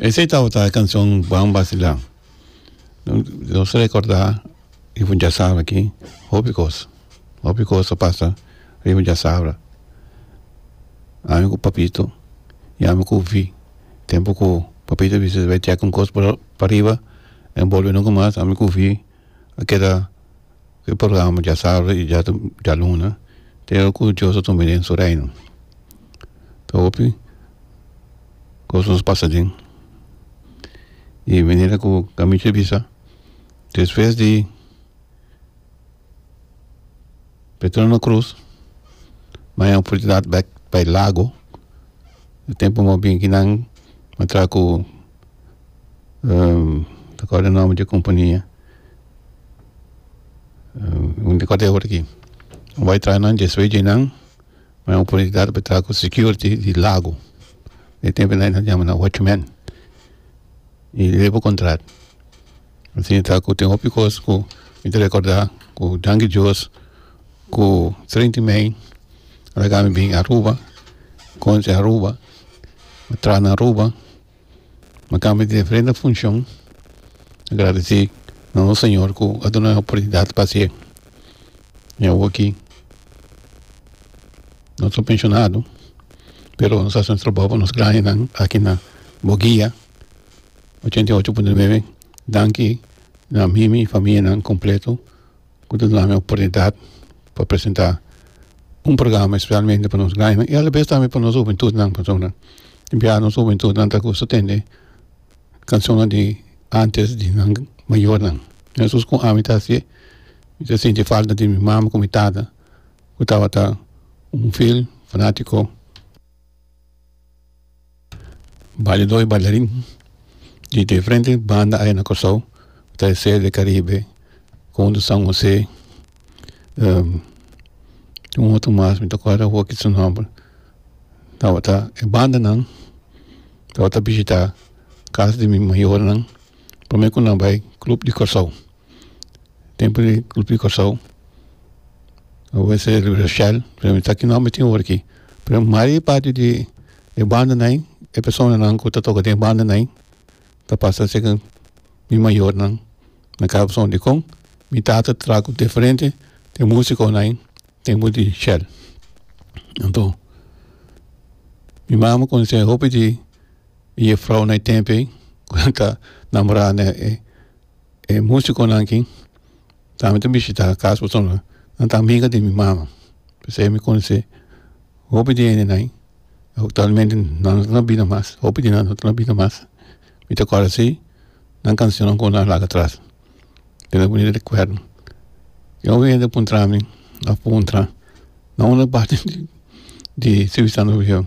Esei tabata e kanshon Buen Vacilar. Nos rekorda e fu diasabra aki hopi kos, hopi kos a pasa riba diasabra. Ami ku papito yami ku Vy tempu ku papito a bisa bai tek un kos pariba a enbolbe nunka mas ami ku Vy a keda e programa dja sardu i dja dja luna te ora ku Dios ta tuma mi den su reino ta hopi kos nos pasa den di manera ku gaminsha a bisa despues di Petron na krus mi haña oportunidad bek bai lago e tempu mop binki nan a traha ku ta akorda e nomber di e kompania Un di kuater horanan ku bai traha nan dje suei djenan mi a oportunidat pa traha ku security di lago e tempo nan e yama nan watchman y leba contrat ansi ta ku tin hopi kos ku mi ta recorda ku danki dios ku treinti mei mi bin aruba konchi aruba mi traha na aruba Lo tambe di diferente funcion a gradeci nos Señor cu a duna nan e oportunidad pa haci e. Mi awor aki no ta pensionado pero nos a haci un trabajo pa nos grandenan aki na Boguia ochenta y ocho punto nueve danki na mi mi familianan completo. cu ta dunami oportunidad pa presenta un programa especialmente pa nos grandenan y alabes tambe pa nos hubentudnan pasobra bia nos hubentudnan ta gusto tende cancionnan di antes di nan mayornan mescos cu ami ta hasi'e mi ta sinti falta di mi mama cu mi tata cu tabata un fiel fanatico Bailado y bailarin di diferente banda ay na Kòrsou ta e Sede di Karibe, Konde San Hosé, un otro mas mi ta kual awo aki su nòmber, tabata e bandanan tabata bishitá kas di mi mayornan promé ku nan bai Club di Kòrsou. tempu di kulpí Kòrsou lo ke se Rivera Shell pero mi ta aki no mi tin oor aki pero mari parti di e bandanan e personanan ku ta toka den e bandanan ta pasa seken mi mayornan na kasa pasobra dikon mi tata traha ku diferente den musikonan tempu di Shell anto mi mama konoshé hopi di e yefrounan e tempo ei ku nan ta namorá. E musiconan aki tambe ta bishita cas pasobra nan ta amiga di mi mama p'esei mi conoce hopi di hendenan actualmente nan no ta na bida mas hopi di nan no ta na bida mas mi ta kor asi nan cancionnan con nan a laga atras kende ta bini recuerdo kende oga hende a puntra mi a puntra na unda parti di ciu santo domingo.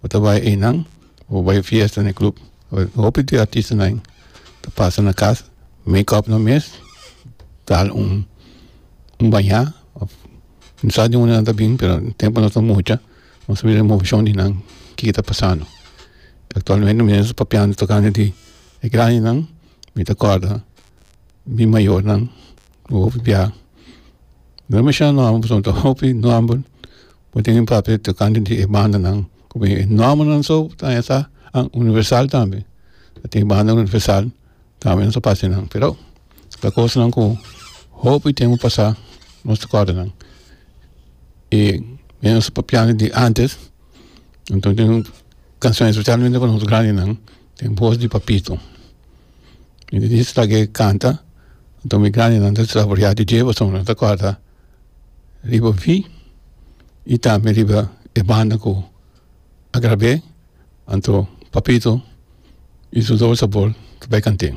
bo ta bay eynan bo bay fiesta na e club hopi di artistanan ta pasa na casa make up nan mes tal un un baña of no sa dónde nan ta bin pero tempo nos ta mucha nos ta win emocion di nan kiko ta pasando actualmente mi ta papiando tocando di e grandi nan mi ta corda mi mayor nan bo hopi bia no demasiado nobo pasobra ta hopi nobo. Bo tin un papia tocante di e bandanan cu e normanan so ta esa an universal tambe ta tin banda universal tambe nos ta parse nan pero ta cosnan cu hopi tempo pasa nos ta corda nan y me nos papiando di antes anto tin un cancion especialmente pa nos grandenan den voz di papito mi di di stragee canta anto mi grandenan ta desaroria di dies pasobra nan ta corda riba vi y tambe riba e banda cu a grab'e anto Papito y su Doble Sabor ta bay cant'e.